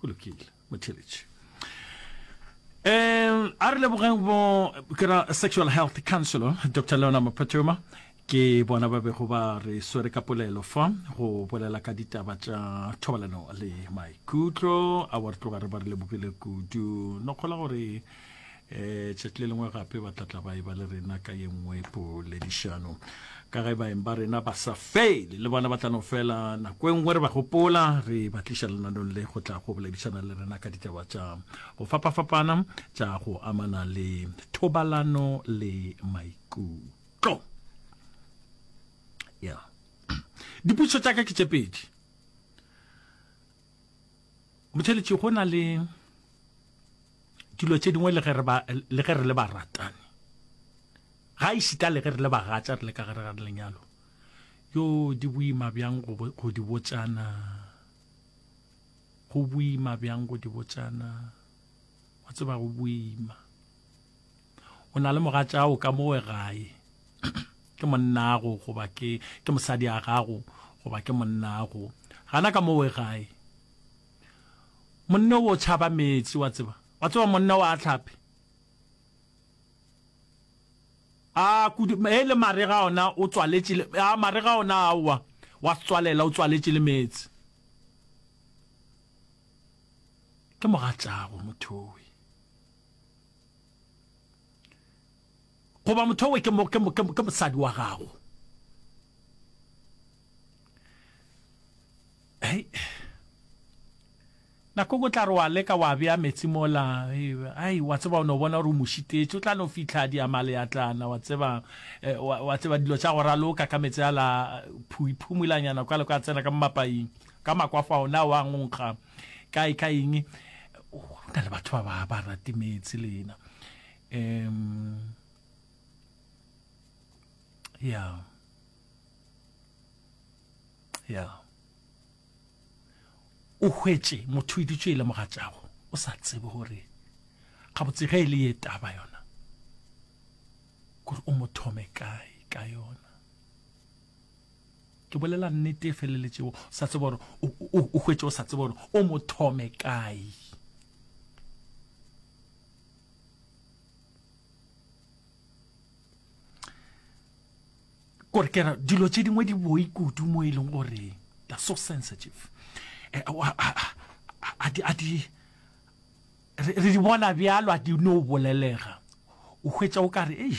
go lokile motheletši um a re lebogeng bo kera sexual health councilor dr leona mophatoma ke bona ba bego ba re swere ka polelo fa go bolela ka ditaba tša thobalano le maikutlo a wa re tloga re ba re lebogile kudu no kgola gore um tšatši le lengwe gape ba tlatla ba e ba le rena ka ye nngwe poledišano ka ge baeng ba rena ba sa fele le bona ba tla no fela nako e nngwe re ba gopola re ba tliša lenanong le go tla go boledišana le rena ka ditaba tša go fapafapana tša go amana le thobalano le maikutlo ya yeah. dipotšišo tša ka ke tše pedi motheletši go na le dilo tše dingwe le ge re le baratani ga e šita le ge re le bagatša re le ka gare ga lenyalo yo di boima bjang go di botšana go boima bjang go di botšana wa tseba go boima o na le mogatša o ka mowe gae ke monnago goba ke ke mosadi a gago goba ke monnago gana ka mowe gae monne o tšhaba metsi wa tseba wa tseba monne wa tlhape a kudu e le mare ga ona o tswaletše a mare ga ona a wa wa tswalela o tswaletše le metsi ke mogatšago mothowe goba motho owe ke, ke, ke, ke mosadi wa gago hey. nako go tla re wa leka wa bea metsi mola ai wa tseba o ne o bona gore o mošitetse o tla no fitlha diamale ya tlana wa tseba eh, wa, wa tseba dilo tša go raloka ka metsi a la phuiphumulanyana kwa le kwa tsena ka mapaing ka makwafa ona wa ngonkga kae ka eng go na le batho ba ba rate meetse le ena um ya ya o hwetše motho o iditšwe e le mogatšago o sa tsebe gore gabotse ge e le ye taba yona gore o mo thome kae ka yona ke bolela nnete e feleletšego o sa tseba gore o hwetše o sa tseba gore o mo thome kae kore kera dilo tše dingwe di boi kudu mo e leng gore they so sensitive eh, re di bona bjalo a di no bolelega o hwetša o kare ei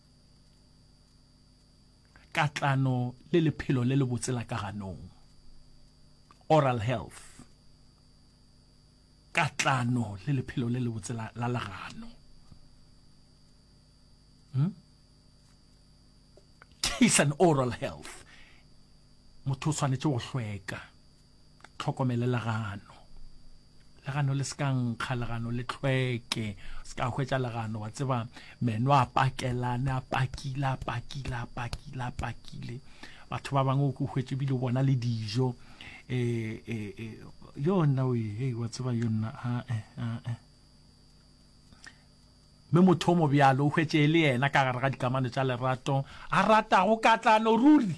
katlano le lephelo le lebotse la ka ganong oral health katlano le lephelo le lebotse la legano hmm? kiss and oral health motho o tshwanetse go hlweka tlhokomele legano legano le se ka nkga legano le tlhweke se ka hwetša legano wa tseba meno a pakelane a pakile a pakile a pakile a pakile batho ba bangwe o hwetše bile bona le dijo um yo nna o e wa tseba yo nna ae ae mme motho o mobjalo o hwetše e le yena ka gare ga dikamano tša lerato a ratago katlano ruri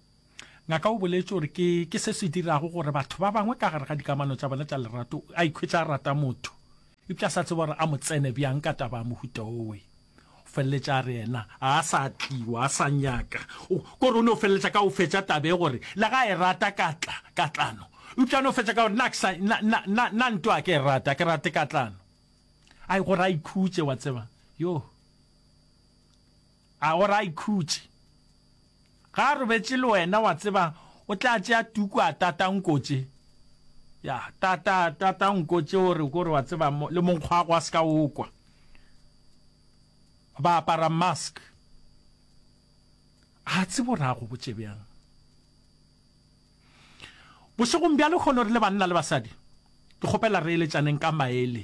Ngaka o boletše gore ke, ke se se dirago gore batho ba bangwe ka gare ga dikamano tša bona tša lerato a ikhwetša a rata motho eupša a sa tseba gore a mo tsene bjang ka taba ya mohuta wowe. O feleletša a re yena ga a sa tli, o a sa nyaka. O, kore o no feleletša ka go fetša taba ye gore le ga a e rata ka tla, katlano. Eupša a no fetša ka gore nna a ke sa, nna, nna, nna, nna ntwa a ke e rate, a ke rate katlano. Ai, gore a ikhutše, wa tseba. Yoh. A gore a ikhutše. Ge a robetše le wena wa tseba o tla tšea tuku a tata nko tše. Ya, tata, tata nko tše o re kore wa tseba mo, le monkgwago a se ka o kwa. Ba apara mask. A tsebe gore a go botše bjang. Bošegong bja lehono re le banna le basadi, ke kgopela re eletšaneng ka maele.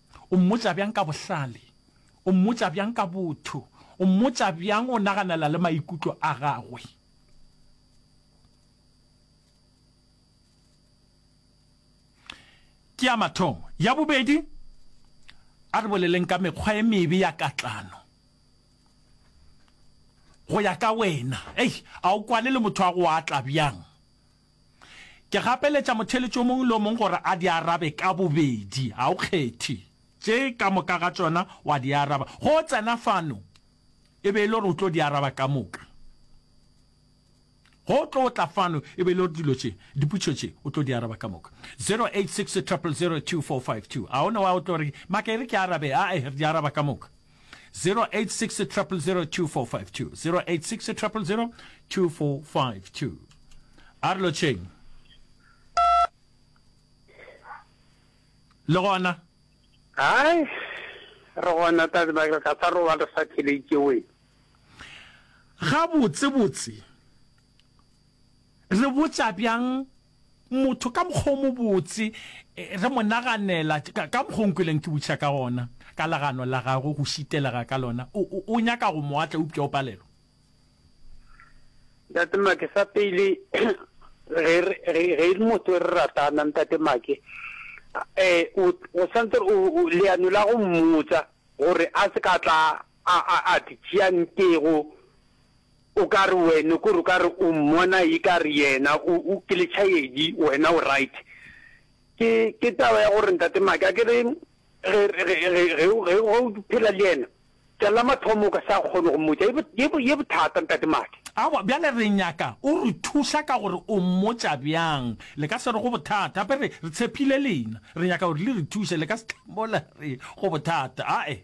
O mmotša bjang ka bohlale? O mmotša bjang ka botho? O mmotša bjang o naganela le maikutlo a gagwe? Ke ya mathomo. Ya bobedi, a re boleleng ka mekgwa e mebe ya katlano. Go ya ka wena, ei, a o kwane le motho a go atla bjang? Ke gapeletša motheeletši o mongwe le o mongwe gore a di arabe ka bobedi, ga o kgethe. Tše ka moka ga tšona wa di araba. Ge o tsena fano, e be e le gore o tlo di araba ka moka. Ge o tlo tla fano, e be e le gore dilo tše, dipotšišo tše, o tlo di araba ka moka. 086 000 2452. A o ne wa o tlo re, Maka e re ke arabe? Ae, re di araba ka moka. 0860002452 0860002452 a re lotšheng le gona hai re gona tadi ba ka sa roba re sa theletše we ga botse botse re botša bjang Motho ka mokgwa o mobotse, re mo naganela, ka, ka mokgwa o nkweleng ke botšha ka gona, ka legano la gagwe, go šitelega ka lona. O, o, o nyaka go mo atla, eupša o palelwa. Ntate Make, sa pele, re, re, ge e le motho re ratana, Ntate Make, um, o, o santse o, o, leano la go mmotsa gore a se ka tla a, a, a di tšea nkego O ka re wena kore o ka re o mmona e ka re yena o o ke letšhaedi wena o right. Ke ke taba ya gore ntate Maki a ke re ge re ge ge ge o ge o phela le yena tša la mathomo o ka sa kgone go mmotša ye ye bo ye bothata ntate Maki. Aowa bjale re nyaka o re thuša ka gore o mmotša bjang le ka se re go bothata gape re re tshepile lena re nyaka gore le re thuše le ka se tla mola re go bothata ae.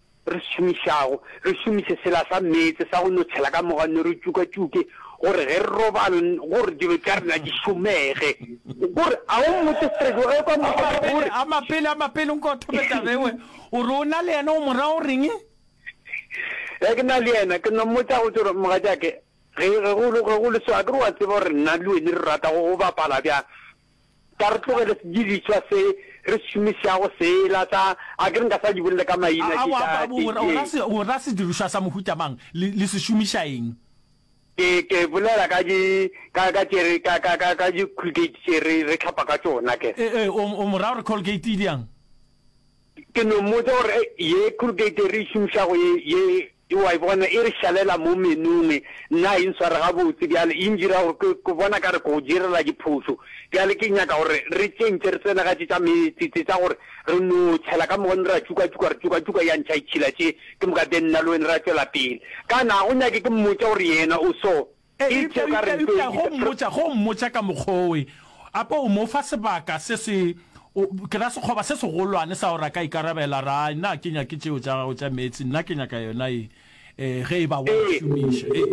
re šomišago, re šomiše sela sa meetse sa go notšhela ka moga nne re tšukatšuke gore ge re robala gore dilo tša rena di šomege. Gore a o mmotše straight wa ge kwa morago gore. Amapele, amapele, amapele nko thome taba ewe. O re o na le yena o mo raya o reng? Ge ke na le yena ke no mmotša go tšore mogatšake ge go le so a ke re wa tseba gore nna le wene re rata go bapala bjang Ka re tlogele sedirišwa se re se šomišago sela sa, a ke re nka sa di bolela ka maina, ke sa, ke, ke. O ra sedirišwa sa mohuta mang? Le, le se šomiša eng? Ke, ke bolela ka di, ka, ka tše re, ka, ka, ka, ka di-Colgate tše re, re hlapa ka tšona, ke. Ee, ee, o, o mo raya gore Colgate e bjang? Ke no mmotša gore, Ye Colgate ye re e šomišago ye, ye, Ke wa e bona e re šalela mo menong, nna ga e ntshware gabotse bjale, e ndira gore ke, ke bona ka re ke go direla diphošo. Bjale ke nyaka gore re tšentše, re tsene ga tše tša meetse tše, tša gore re no tšhela ka moka, ra tšukatšuka, ra tšukatšuka, ya ntšha itšhila tše ke moka, then nna le wena ra tšwela pele. Kana ga go nyake ke mmotša gore yena o so? Eupša, eupša, eupša go mmotša, go mmotša ka mokgwa owe, ape o mo fa sebaka se se, o, ke ra sekgoba se segolwane sa gore a ka ikarabela, ra, nna ke nyake tšeo tša gago tša meetse, nna ke nyaka yona e, e, ge e ba wa e šomiša. Ee.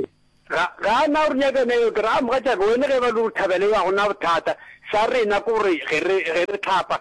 Ga, ga a na gore nyaka yona eo. Ke ra, a, mogatšaka, wena ge e ba e le gore thabelo ya go na bothata, sa rena ke gore ge re, ge re hlapa,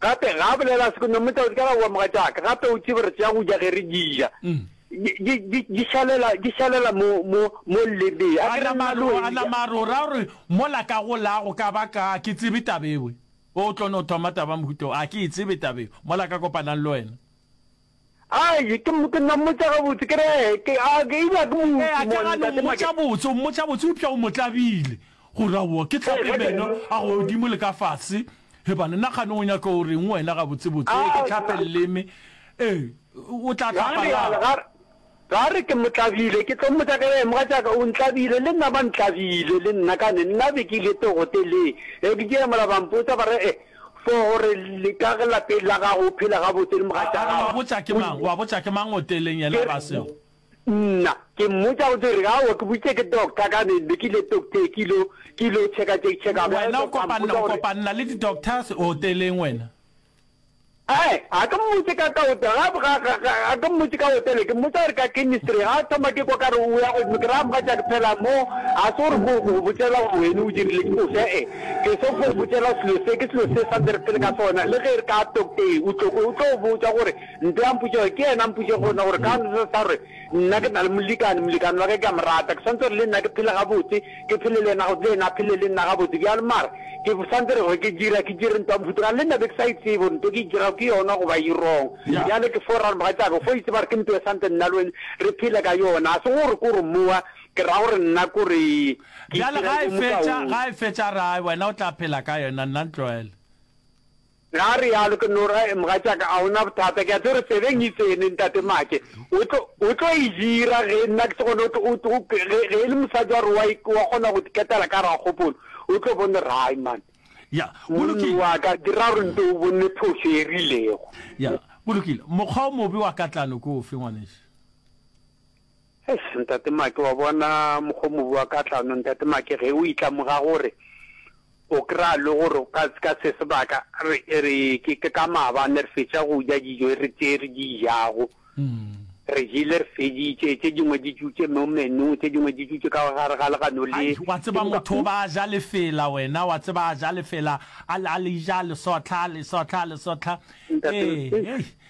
gape ga a bolela seko no motao di ka gagoa moga tšaka gape o tsebe re tšea go ja ge re dija mm. di šalela mo lebe a nama re o raya gore mola ka go lago ka ba ka ke tsebe tabewe o tlo no thoma taba mohuto a ke e tsebe tabewe mola ka kopanang le wena Ai, ke, ke no mmotša gabotse, ke re, ke, a, ke, eupša ke Ee, a ka ga no Ntate mmotša Makete. botse, o mmotša botse, eupša o mo tlabile, gore, Aowa, ke hlape Ee, ge ke, Meno a godimo le ka fase. He bana, na kgane o nyaka go reng wena gabotsebotse? Ee, ke tlhape Aowa. leleme. Ee, o tla Ga re hlapa rialo, ga lang? re, Ba re ke motlabile, ke tlo mmotša ka eng, mogatšaka o ntlabile, le nna ba ntlabile, le nna kane, nna be ke ile togote le, ge ke jemola ba mpotsa ba re, eh, for gore le ka ge lapeng la gago o phela gabotse le mogatša gago, wa botša ke mang, wa botša ke mang hoteleng yena ba seo. Nna, ke mmotša go dire, aowa ke boditše ke doctor kane, be ke ile tokte ke ilo, ke ilo checker, check, checker, bjale doctor a mpotsa gore. Wena o kopanna, o kopanna le di doctors hoteleng wena? Ee, ga ke mmotše ka ka hotel, ga, ga, ga, ga, ga ke mmotše ka hotel, ke mmotša gore ka chemistry, ga a thoma ke kwa ka re o ya godimo, ke ra mogatša ke phela mo, ga se gore ko go botšela gore wene o dirile ke ko se, e, ke se go botšela selo se, ke selo se sa nde re phele ka sona, le ge re ka tokte, o tlo, o tlo botša gore, nto ya mpotše gore, ke yena mpotše gona gore ka sa re, Nna ke na le molekane, molekane wa ka ke a mo rata, ke swantse gore le nna ke phele gabotse, ke phele le yena gabotse, le yena a phele le nna gabotse bjalo. Mara ke swantse re gore ke dira, ke dire ntwa mofuta kang? Le nna be ke sa e tsebe gore nto ke e dirago ke yona goba e wrong. Bjale ke fo ra gore, Mogatšaka, o fo itse ba re ke nto e swantse nna le wena re phele ka yona, ga se gore ko gore mowa ke ra gore nna ko re ke Bjale ga e fetša, ga e fetša a re, Ai, wena o tla phela ka yona, nna ntlogele. Ge a realo, ke no ra, Mogatšaka, a o na bothata? Ke a tseba gore tsebeng e tsene, Ntate Maake. O tlo, o tlo e dira, ge nna ke se gona. O tlo, o tlo, ge, ge e le mosadi wa gore wa, wa kgona go ketela ka gare ga kgopolo, o tlo bone gore, Hai, man. Ya, go lokile. Monna wa ka, dira gore nto o bone phošo e rilego. Ya, go lokile. Mokgwa o mobe wa katlano ke ofe, ngwanešu? Eish, Ntate Make, wa bona mokgo mobu wa ka tlano, Ntate Make, ge o itlamoga gore o kry-a le gore ka, ka se sebaka re, re, ke, ke ka maabane re fetša go ja dijo re tše re di jago. Re jele re feditše, tše dingwe di tšutše mo menung, tše dingwe di tšutše ka gare ga legano le. Ai, wa tseba motho o ba a ja lefela wena, wa tseba a ja lefela, a le, a le ja a le sotla, a le sotla, a le sotla. Ntate, Ee, hei,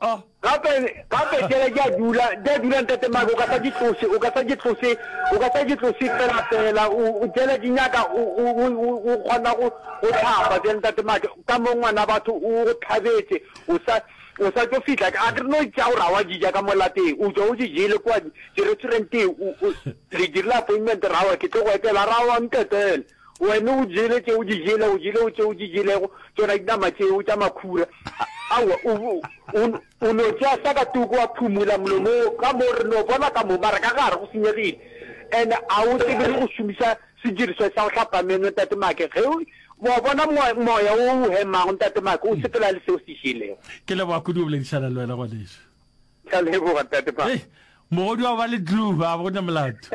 A. Gape, gape tšela di a dula, di a dula, Ntate Mike, o ka sa di tlose, o ka sa di tlose, o ka sa di tlose fela, fela, o, o tšela di nyaka, o, o, o, o, o kgona go, go hlapa bjang, Ntate Mike, ka mo ngwana batho o go tlhabetše, o sa, o sa tšo fihla, a ke re no tša gore ga wa di ja ka mo lapeng, o tšwa o di jele kua di, di restauranteng, o, o, re dirile appointment, ra wa ke tlo go etela, ra wa, Ntatele. Wena o jele tše o di jele, o jele o tše o di jelego, tšona dinama tšeo tša makhura. Aowa, o, o, o no tšea sa ka toko wa phumula molomong ka mo, re no bona ka mo, mara ka gare go senyegile. And a o tsebe le go šomiša sedirišwa sa go hlapa meno, Ntate Make, ge o, wa bona mo, moya wo o hemago, Ntate Make, o sepela le seo o se jelego. Ke leboga kudu go boledišana le wena, ngwanešu. Ke a leboga, Ntate Make. Hei, mogodu wa ba le glue, a go na molato.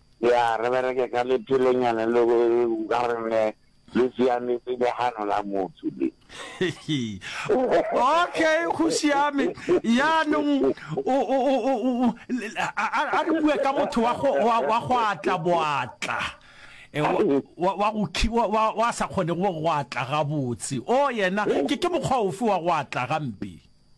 Ya, re bereke ka lephelonyana le go ka re ne le siametse legano la motho le. okay go siame yaanong a re bue ka motho wa go atla boatla eh, wa sa kgone go atla gabotse o oh, yena ke mokgwa ofe wa go atla gampe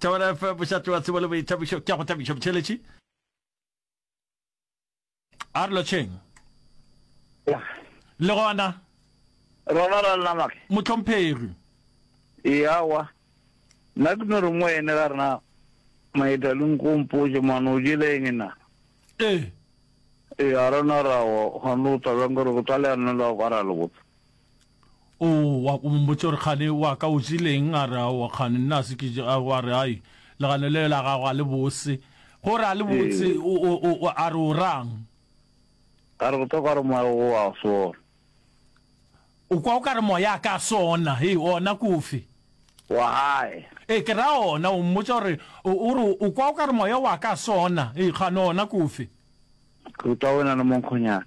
Thobela FM bošate wa tsebo le boithabišo ke a go thabišo botšheletši a re lotšheng le gona rona ra lela make motlhomphegi eawa nna ke no re mo ene ka rena maeta le nkompoje mano o jele eng na ee ee a rona rawa gone o tabeng gore go tsa leano la go ka ra le botsa O wa ko mombotša gore kgane wa ka o jeleng a re a wa kgane nna se ke a wa re ai legano le la gago a le bose gore a le botse o a re o rang a re botoka gore moya o wa sona o kwa o ka re moya ka sona he ona kofe wa hae e ke ra ona o mmotsa gore o re o kwa o ka re moya wa ka sona e kgane ona kofe ke utlwa o na le monkgonyana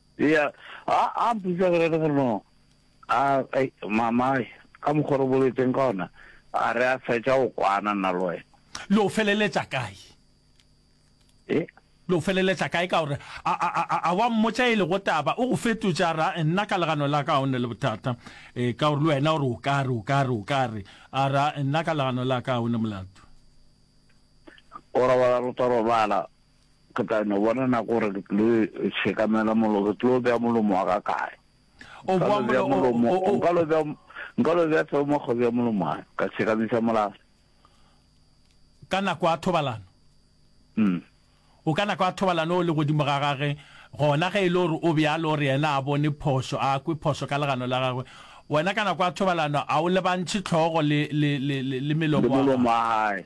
Eya, a, a mpotsa gore le gore no, a, ei, mama, ka mokgwa re boletseng ka ona, a re a fetša go kwana nna le wena. Le o feleletša kae? E? Le o feleletša kae ka gore, a, a, a, a, a wa mmotša e lego taba, o go fetotša, ra, nna ka legano la ka ga o ne le bothata, e, ka gore le wena o re o ka re, o ka re, o ka re, a ra, nna ka legano la ka ga o ne molato. O robala, re tlo robala. Ke tla no bona nako gore ke tlo tshekamela molo, ke tlo bea molomo wa ka kae. O boa molomo. Nka lo bea nka lo bea tseo mo kgwebea molomo wa ka tshekamisa molase. Ka nako ya thobalano. Mm. O ka nako ya thobalano o le godimo ga gage gona ge e le gore o bjalo gore yena a bone phošo a kwe phošo ka legano la gagwe wena ka nako ya thobalano a o lebantšhe tlhogo le le le le melomo wa gae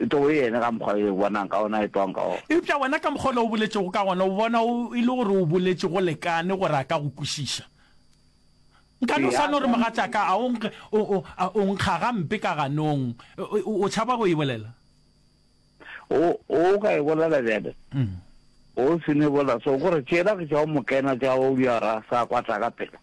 E tlogo e ene ka mokgwa e bonang ka ona, e tlogang ka ona. Eupša wena ka mokgwa ole o boletšego ka gona, o bona o e le gore o boletše go lekane gore a ka go kwešiša. Nka no sa no re, Mogatšaka, a o nkge, o, o, a o nkga gampe ka ganong. O, o tšhaba go e bolela. O, o ka e bolela bjale. O se no e bolela so, gore tšela ke tša go mo kena tša go bja ra sa kwatla ka pela.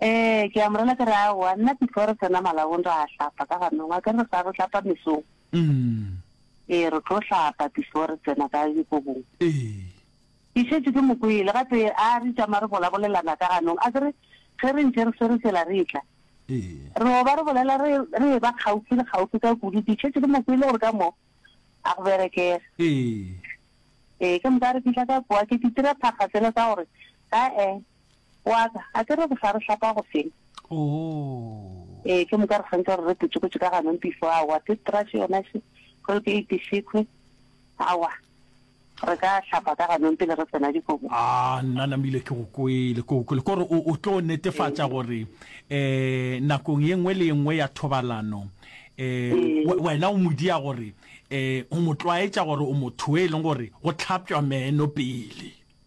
Ee, ke a mo rela ke re aowa, nna before re tsena malabong ra hlapa ka ganong, a ke re sa re hlapa mesong. Mm. Ee, re tlo hlapa before re tsena ka dikobong. Ee. Ke šetše ke mo kwele gate a re tšama re bolabolelana ka ganong, a ke re ge re ntše re swere tsela re etla. Ee. Re oba re bolela re re eba kgaufi le kgaufi ka kudu, ke šetše ke mo kwele gore ka mo a go berekega. Ee. Ee, ke moka re fihla ka kwa ke ditira phakga tsela tsa gore Ae, wa ka, a ke re re sa re hlapa go feng? Oh. Ee, ke moka re swantse re re putšukutše ka ganong before awa toothbrush yona še, Colgate šekhwi, awa, re ka hlapa ka ganong pele re tsena dikobong. Ah, nna Namile ke go kwele, ke go kwele, ko re o, o tlo netefatša gore um nakong ye nngwe le ye nngwe ya thobalano um we- wena o mo dia gore um o mo tlwaetša gore o motho e leng gore go tlhapšwa meno pele.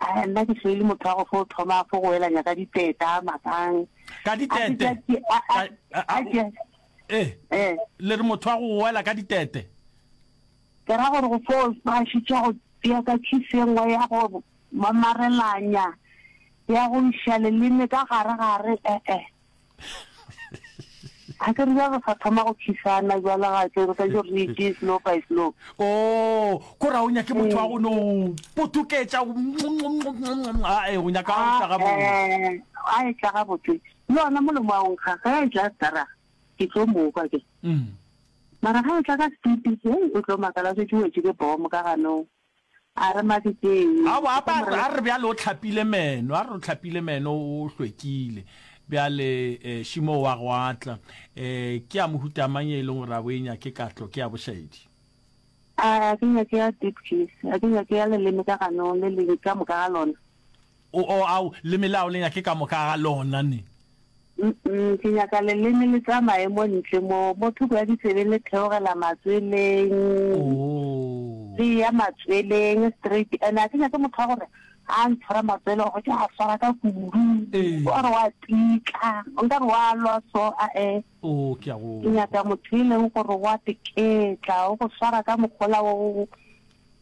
Ae, nna ke šele motho wa go fo thoma fo go elanya ka diteta makang. Ka ditete? A ke a a a ke Eh, eh le re motho wa go goela ka ditete. ke ra gore go fo ba šitša go tšea ka tšhisi e nngwe ya go mamarelanya ya go iša leleme ka gare gare eh eh. ga ke re jalo sa thoma go tšhisana jala ga ke ka jo re itse slow by slow o oh, ko ra o nyake motho wa go no potuketša ae o nyaka o tlaga bo a e tlaga botse le ona molomo wa onkga ga e tla tsara ke tlo mokwa ke mm. mara ga e tla ka speed o tlo makala se tšuwetse ke bomo ka ganong A re Mabikeng. Aowa, a ba a re bjale o tlhapile meno, a re o tlhapile meno o hlwekile. Bjale eh, Šimo wa go atla. Eh, ke a mohuta mang ye e leng gore a bo e nyake katlo, ke ya bošaedi? A re a ke nyake ya deep kiss, a ke nyake ya leleme ka ganong le le ka moka ga lona. O o au, le melao le nyake ka moka ga lona ne. Mpm, ke nyaka leleme le tsamaye mo ntle mo, mo thoko ya ditsebe le theogela matsweleng, Oo. le eya matsweleng straight. Ene a ke nyake motho wa gore ga a ntshwara matswele gore ke a swara ka kudu, Ee. wa re wa tika, o nka re wa lwa so, ae. Oo, ke a go. Ke nyaka motho e leng gore wa teketla, o go swara ka mogola o,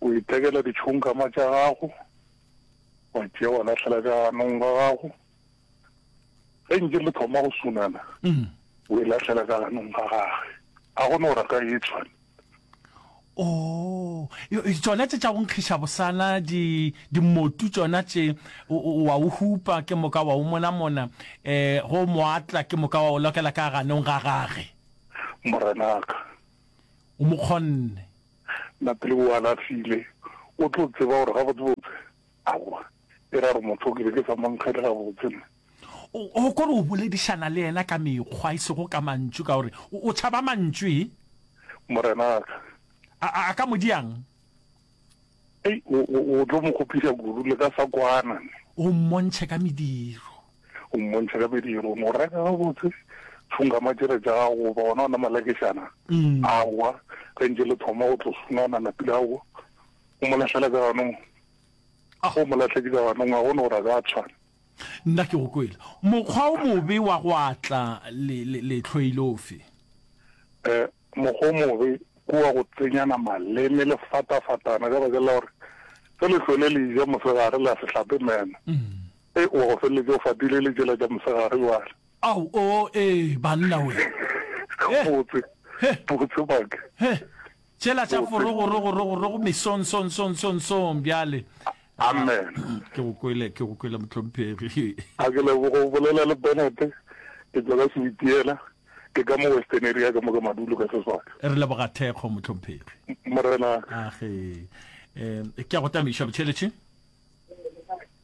O ithekela ditšhonkama tša gago, wa tšea wa lahlela ka ganong ga gago. Ge nke le thoma go sunana, mm. o e lahlela ka ganong ga gage. Ga go no raka e tshwane. o oh, tsona tse tša go nkgiša bosana di dimotu tsona tše wa o hupa ke moka wa o mona mona eh go moatla ke moka wa o lokela ka ganong ga gage morenaka o mo kgonne na pele o alafile, o tlo tseba gore gabotsebotse, aowa, e ra gore motho o ke be ke sa mo nkgele gabotse nna. O, o kore o boledišana le yena ka mekgwa, e sego ka mantšu, ka gore o, o tšhaba mantšu, e? Morenaka. A, a, a ka mo diang? Ei, o, o, o tlo mo kgopiša kudu le ka sa kwana. O mmontšhe ka mediro. O mmontšha ka medirong. O reka gabotse, tšhungama tšela tša gago, goba gona ona malakešana a wa, ge ntše le thoma go tlo sunana napi la wa. O mo lahlela ka ganong. Ge o mo lahletše ka ganong, ga gona gore a ka tshwana. Nna ke go kwele. Mokgwa o mobe wa go atla le, le, lehlwe e le ofe? Eh, mokgwa o mobe ke wa go tsenyana maleme le fatafatana ka bakeng la gore ge lehlwe le le ja mosegare le a se hlape meno. Ee, wa go feleletša o fatile le tšela tša mosegare bjale. Ao, oo, ee, banna we. He, Botse, he, botse Maki. he, tšela tša Botse. forogorogorogorogo mesonsonsonsonsong bjale. Ah, Amen. Ke go kwele, ke go kwele mohlomphegi. A ke leboga o bolela le Bennett, ke tšwa ka Sewitiela, ke ka mo Western area ka mo ka Madulo ka seswaka. Re leboga thekgo mohlomphegi. Morenaka. Age, eh, ke a go tamiša botšheletše.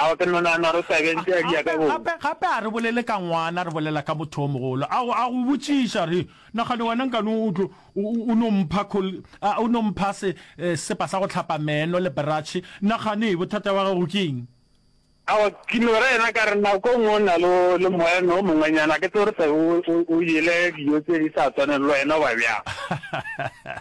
Aowa ke nonana re sa bentse a dia ka bomo. Gape, gape, gape a re bolele ka ngwana, re bolela ka motho o mogolo. A go, a go botšiša, re, Nagane wena nkane o tlo, o, o, o no mpha khol, a, o no mpha se, eh, sesepa sa go hlapa meno le bratšhe. Nagane, bothata bja gago ke eng? Aowa, ke no re yena, ka re, Nako e nngwe o na le, le moeno o mongwenyana, ke tsebe gore o sa be o, o, o jele dijo tše di sa tshwaneng le wena, goba bjang.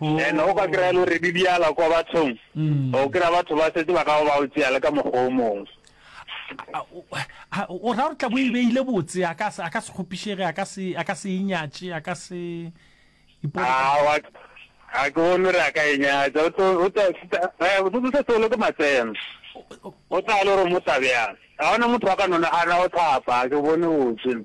And o ka kry-a le gore di diala kwa bathong, o kry-a batho ba setse ba ka ba o tseya le ka mokgwa o mongwe. A- o- a- o ra gore tla bo e beile botse a ka se a ka se kgopišege a ka se a ka se e nyatše a ka se ipone ka- A wa- a ke bone gore a ka e nyatsa, o tlo- o tla- seta- eh, o tlo setse o le ke matseno. O tla le gore o mo tla bjang. Ga gona motho a ka no nagana go thapa, a ke bone botse.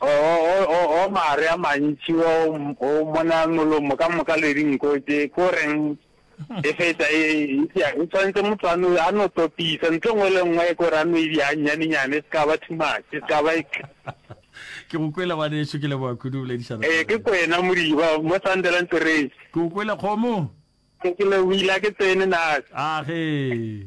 O-o-o-o maare a mantši wa o, o mona molomo ka moka le dinko tše, ke o reng e feta e, eupša o tshwanetse motho a no, a no topisa ntho nngwe le nngwe ke gore a no e bja nyanenyane, e se ka ba too much, e se ka ba e Ke go kwele ngwanešu, ke leboga kudu o boledišana le Ee, ke rena. kwena Modiba, mo Sandeland Terrace. Ke go kwele kgomo. Ke lebohile, a ke tsene na. A ge.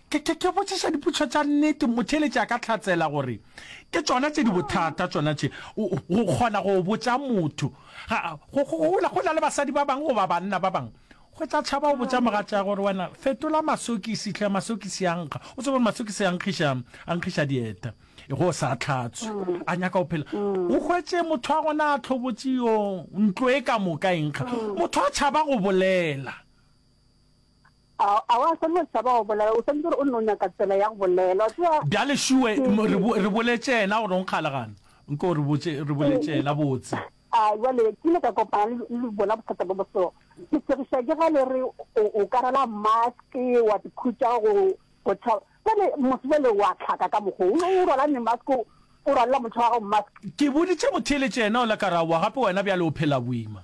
Ke, ke, ke botšiša dipotšišo tša nnete, motheeletši a ka hlatsela gore ke tšona tše di bothata tšona tše, go kgona go botša motho. Ga, go, go, go, go na le basadi ba bangwe goba banna ba bangwe, go tla tšhaba go botša mogatša gore, Wena, fetola masokisi hle, masokisi a nkga. O tseba gore masokisi a nkgiša, a nkgiša dieta, ge o sa hlatswe. A nyaka go phela. O hwetše motho wa gona a hlobotše, yo, ntlo e ka moka e nkga. Motho a tšhaba go bolela. A, a wa swanela go tšhaba go bolela, o swanetše gore o nne o nyaka tsela ya go bolela, wa tseba. Bjale Sue, m, re, bo, re boletše yena gore o nkgala gana. Nke o re botše, re boletše yena botse. A, bjale, ke ile ka kopana le, le bona bothata bjo bo so. Ke segiša ke ge le re o, o ka rwala mask, wa se khutša go, go tšhaba. Bjale, motho bjale wa hlaka ka mokgo, o, o rwala ne mask, o, o rwalela motho wa gago mask. Ke boditše motheeletši yena yola ka re, Aowa, gape wena bjale o phela boima.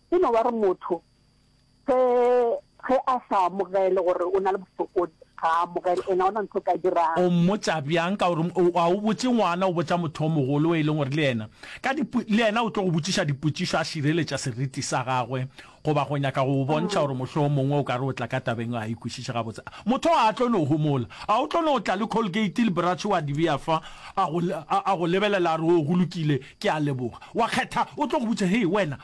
E no ba re motho ge ge a sa amogele gore o na le bofokodi, ga a amogele, ena ona ntho ka dirang. O mmotša bjang ka gore o, a o botše ngwana, o botša motho o mogolo o e leng gore le yena ka dipo, le yena o tlo go botšiša dipotšišo a šireletša seriti sa gagwe goba go nyaka go go bontšha gore mohlomongwe o ka re o tla ka tabeng ga a e kwešiše gabotse. A, motho oo a tlo no homola? A o tlo no tla le Colgate le Bratsho wa di bea fa, a go, a, a go lebelela a re, Oo, go lokile, ke a leboga. Wa kgetha, o tlo go botša, Hei, wena,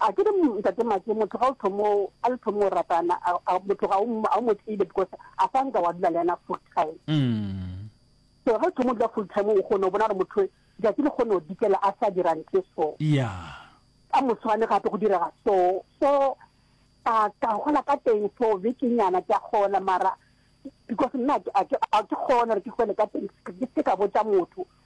A ke re Ntate Maki motho ga o thomo a le thomo ratana a, a motho ga o a o mo tsebe because a sa nka wa dula le yena full time. Mm. So ga o thomo dula full time o kgone o bona gore motho ja ke le kgone o dikela a sa dira ntle so. Yeah. Ka moswane gape go direga so so ka ka gola ka teng so be ke nyana ke gola mara because nna a ke a ke kgone re ke gole ka teng ke se ka botsa motho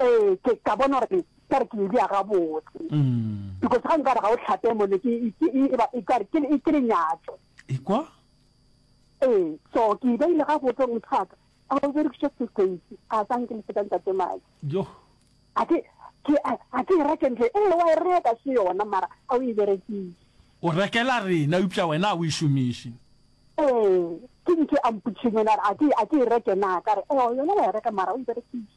Ee, ke ka bona gore ka re ke edia gabotse because ga nka re ga o tlhape mone ke ke lenyatso ikwa ee so ke e beile gabotse gore mothaka a o berekiša sekeisi a sa nke le fetang tate madi jo a ke a ke e reke ntle ee wa e reka se yona mara a o e berekise o rekela rena eupša wena a o e šomiše ee ke nke a mpotšheng yona a ke e reke na ka re ee yona wa e reka mara o e berekise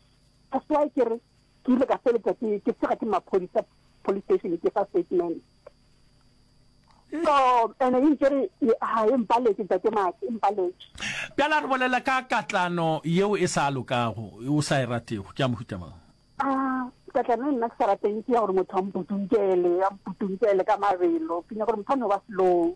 That's why ke re ke ile ka feletsa ke ke tsega ke maphodisa police station ke fa statement so ene e nkere ha e mpaletse tate maki e mpaletse bjala re bolela ka katlano yeo e sa lokago o sa e ratego ke a mohuta mang a ah, katlano e nna ke sa rateng ke ya gore motho a mputunkele a mputunkele ka mabelo ke nya gore motho a no ba selong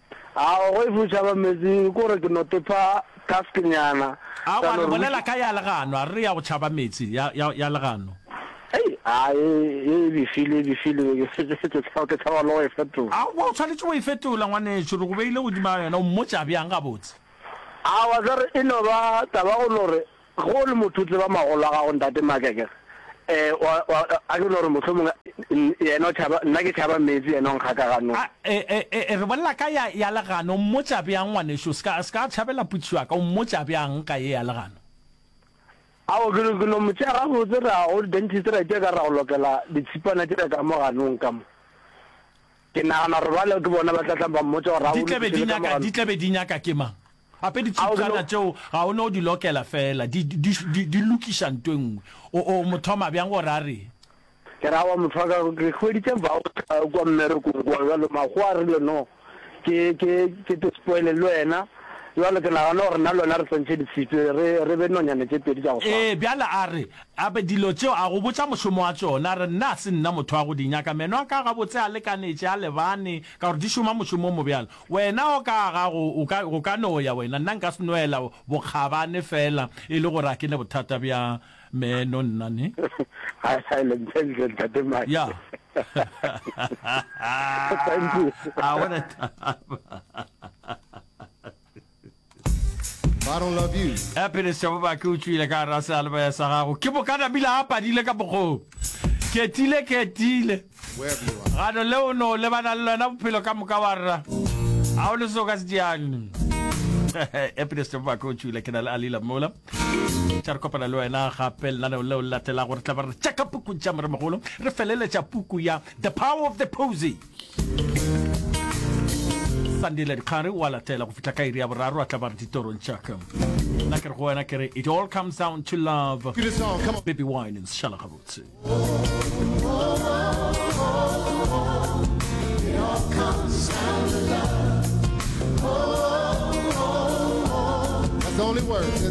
Ao, go e fušaba meetse ko re ke no tepha task nyana. Aowa, le bolela ka ya legano, a re re ya go tšhaba meetse, ya, ya, ya legano. Hei, a, ye, ye e befile, e befile, ke, ke, ke, ke tshaba, ke tshaba le go e fetola. Aowa, o tshwanetše go e fetola, ngwanešu, re go beile godimo ga yona, o mmotša bjang gabotse? Aowa, tla re e no ba taba go no re Ge o le motho o tseba magolo a gago ntate Maaka ke re eh wa wa a ke no re mohlomong yena o tšhaba nna ke tšhaba meetse yena o nkga ka ganong. A e e e re bolela ka ya ya legano o mmotša bjang ngwanešu o ska o ska tšhabela putšo ya ka o mmotša bjang ka ye ya legano. Ao ke no ke no mo tšea gabotse ra go dentist ra itša ka re ra go lokela ditshipana tša ka mo ganong ka mo. Ke nagana gore bale ke bona ba tla tla ba mmotša gore a Di o tla be di lokišele ka nyaka, di mogano. tla be di nyaka ke mang? Gape A o ditšhiptšana seno. tšeo ga o no di lokela fela, di, di, di, di, di lokiša nto e nngwe. O, o mo thoma bjang gore a reng? Ke ra wa motho wa ka, ke hweditše voucher kua mmerekong kua, bjalo Makgowa a rile no, ke, ke, ke te spoile le wena, bjalo ke nagana gore nna le wena re swantšhe di sitwe, re, re be nonyane tše pedi tša go swana. Ee, bjale a re, Gape dilo tšeo a go botša mošomo wa tšona, re nna a se nna motho wa go di nyaka. Meno a ka gabotse a lekanetše, a lebane, ka gore di šoma mošomo o mo bjalo. Wena o ka gago o ka, o ka no ya, wena. Nna nka se no ela bokgabane feela e le gore a ke ne bothata bja meno, nna, ne. Ha e le ntlentle, Ntate Mike. Ya. Thank you. A bona taba. ya pele sebobake o tšwile ka gara sealebaya sa gago ke bokana bila a padile ka bokgong ketile ketile gano le o no lebana le lona bophelo ka moka wa rra ga o le seo ka se diane ya pele sebobake o tšwile ke na le alila mola tša re kopana le wena gape lenaneo leo le latelago re tla ba re tšaka puku tša moremogolo re feleletša puku ya the power of the posy sandile dikgare wa latela go fihla ka iri ya boraro a tla ba re ditorong tšaka nna ke re go wena ke re it all comes down to love baby wine šala gabotse It's only words.